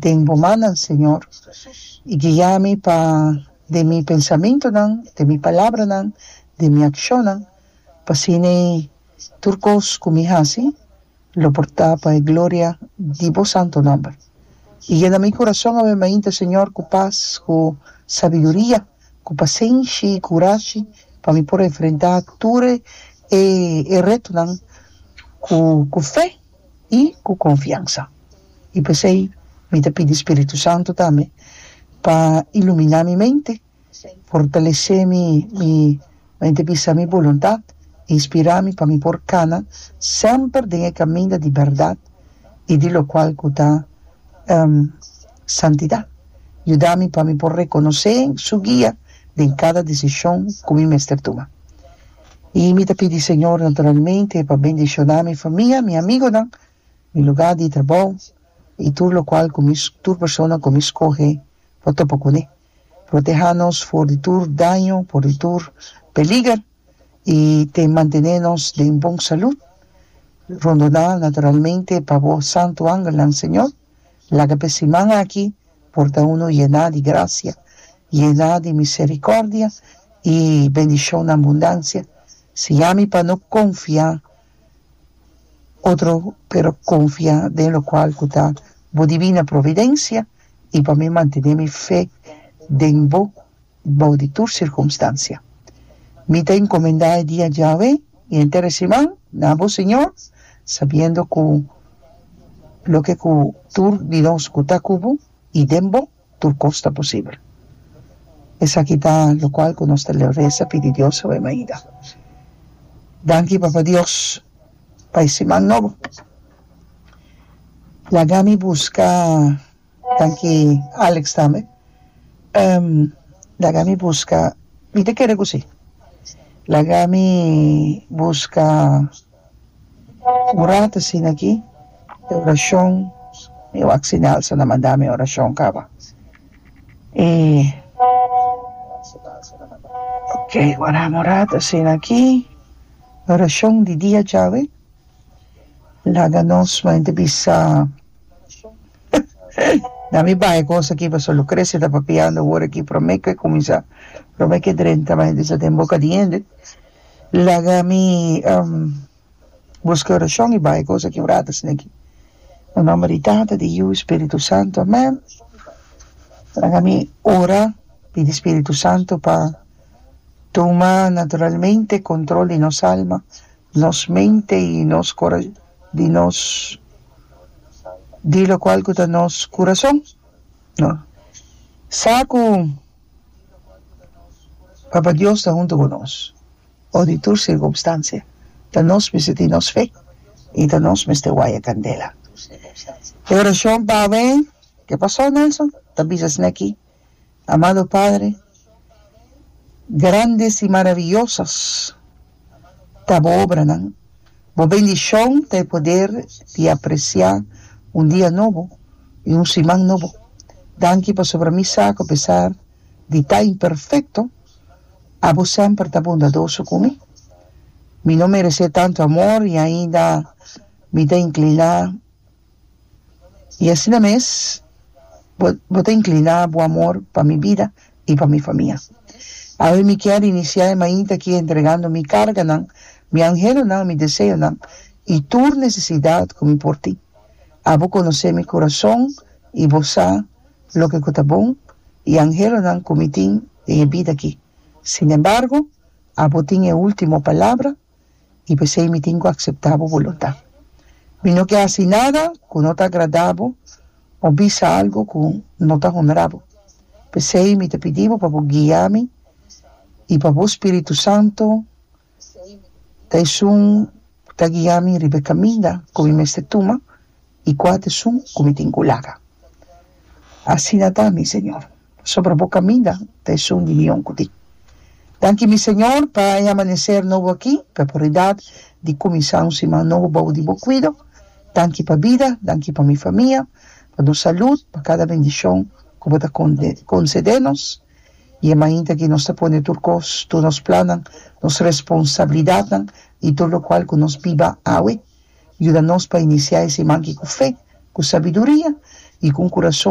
den bo mannan, Señor, i guia mi pa den mi pensamentunan, den mi palabranan, den mi akshonnan, pa asina i tur kos ku mi hasi lo por ta pa e gloria di bo santu nòmber. I yena mi kurason awe mainta, Señor, ku pas, ku sabiduria, ku pasenshi i kurashi pa mi por enfrentá tur e retunan ku fe i ku konfiansa. I p'esei mi ta pidi spiritu santu tambe pa iluminá mi mente, fortalesé mi mi mente bisa mi boluntat, inspirá mi pa mi por kana semper den e kaminda di bèrdat i di lokual ku ta santidat, yuda mi pa mi por rekonosé su guia den kada desishon ku mi mester tuma. I mi ta pidi Señor naturalmente pa bendiciona mi famia, mi amigonan, mi lugar di trabou i tur locual cu mi tur persona cu mi scoge pa topa cune. Proteha nos for di tur daño, for di tur peliger i te mantene nos den bon salud. Rondoná naturalmente pa bo santo angelnan, Señor. Laga p'e siman aki por ta unu yená di grasia, yená di miserikòrdia i bendishon na abundansia. Siami pa no konfiá otro pero konfiá den lokual ku ta bo dibina providensia i pa mi mantené mi fe den bo. bou di tur sirkumstansia. Mi ta enkomendá e dia djawe i henter e siman na bo, Señor, sabiendo ku loke ku tur di nos ku ta ku bo i den bo, tur kos ta posibel. Esaki ta lokual ku nos ta resa pidi Dios awe mainta. Danki, Papa Dios, pa e siman nobo. Laga mi buska. Taki Alex tambe ehm laga mi buska mi ta kere cu si laga mi buska urat asina aki e oracion mi wak si Nelson na manda mi oracion caba y ok guardami urat asina aki oracion di dia djawe. Laga nos mente bisa na mi bai cos aki pasobra lo crece ta papiando wor aki prome ke cuminsa prome ke drenta mi bisa den boca di hende laga mi busca oracion y bai cos aki wrata sina aki na nomber di tata di yiu y spiritu santo amen laga mi ora pidi spiritu santo pa tuma naturalmente control di nos alma Nos mente y nos cora di nos di locual cu ta nos curason, no sa cu Papa Dios ta hunto cu nos o di tur circumstancia ta nos mester tin nos fe y ta nos mester waya candela. E oracion pa awe, ke paso Nelson? Ta bisa esneki Amado Padre, grandes i maraviyosas ta Bo obranan, Bo bendishon ta e poder di apresiá un dia nobo i un siman nobo. Danki pasobra mi sa ku apesar di ta imperfekto, Abo semper ta bondadoso ku mi. Mi no meresé tantu amor i ainda mi ta inkliná. I asina mes bo bo ta incliná bo amor pa mi bida i pa mi famia. Awe mi kier iniciá e mainta aki entregando mi carganan, mi anhelonan, mi deseonan i tur necesidad cu mi por tin. Abo conocé mi curazon i bo sa loke cu ta bon i anhelonan cu mi tin den e bida aki. Sinembargo, abo tin e ultimo palabra. i p'esei mi tin ku akseptá bo bolontá. Mi no ke hasi nada ku no ta agradá bo òf bisa algu ku no ta honrá bo. P'esei mi ta pidi bo pa bo guia mi i pa bo spiritu santu ta esun ta guia mi riba e kaminda ku mi mester tuma, y cua ta sun cu mi tin cu laga. Asina ta, mi Señor, pasobra bo caminda ta e sun di mi yon cu tin. Danki, mi Señor, pa e amanecer nobo aki, p'e oportunidad di cuminsa un siman nobo bao di bo cuido. Danki pa bida, danki pa mi famia, pa nos salud, pa cada bendicion cu bo ta concede nos. Y e mainta aki nos ta pone tur cos, tur nos plannan, nos responsabilidadnan y tur locual cu nos biba awe, Yuda nos pa inisiá e siman aki ku fe, ku sabiduria i ku un kurason.